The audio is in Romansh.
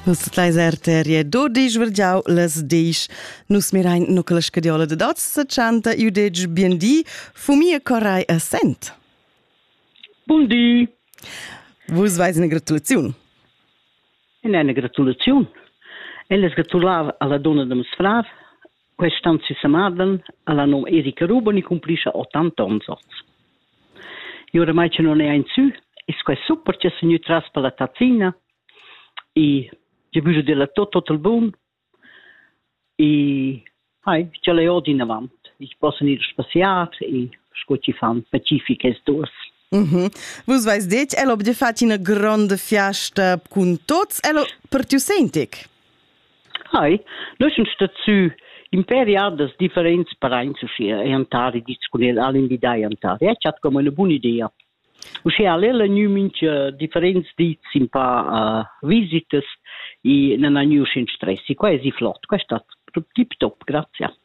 Nus leis arteria dodisch vergiau las desch. Nus mirain no che la scadiola de dots se chanta iu detg bien di, fumia corai a sent. Bun di. Vus veis una gratulaziun. In eine Gratulation. Ella sgratulava alla donna de mes frav, Quest onn sesamadan ha la num Erika Ruboni cumplischa ottanta onns oz. E oramai che non è ein sü, ist quai super che s'è gnü tras per la tazzina e che bügl della tot total bun e hai, ch'el è odi inavant. Ich possa ir spaziar e sco ci fan pacifiches durs. Mm Vus vais detg, el ob de fat ina gronda fiasta cun tots, el per tiu sentic? Hai, nus sun stats sü impè riadas differents paraints uschia e antari dits cun el, al invidai antari. E chat come üna buna idea. Uschè al el ha gnü mincha differents dits in pa uh, visitas e nan ha gnü uschè in stress. E qua es i flot, qua è stat tip top, grazia.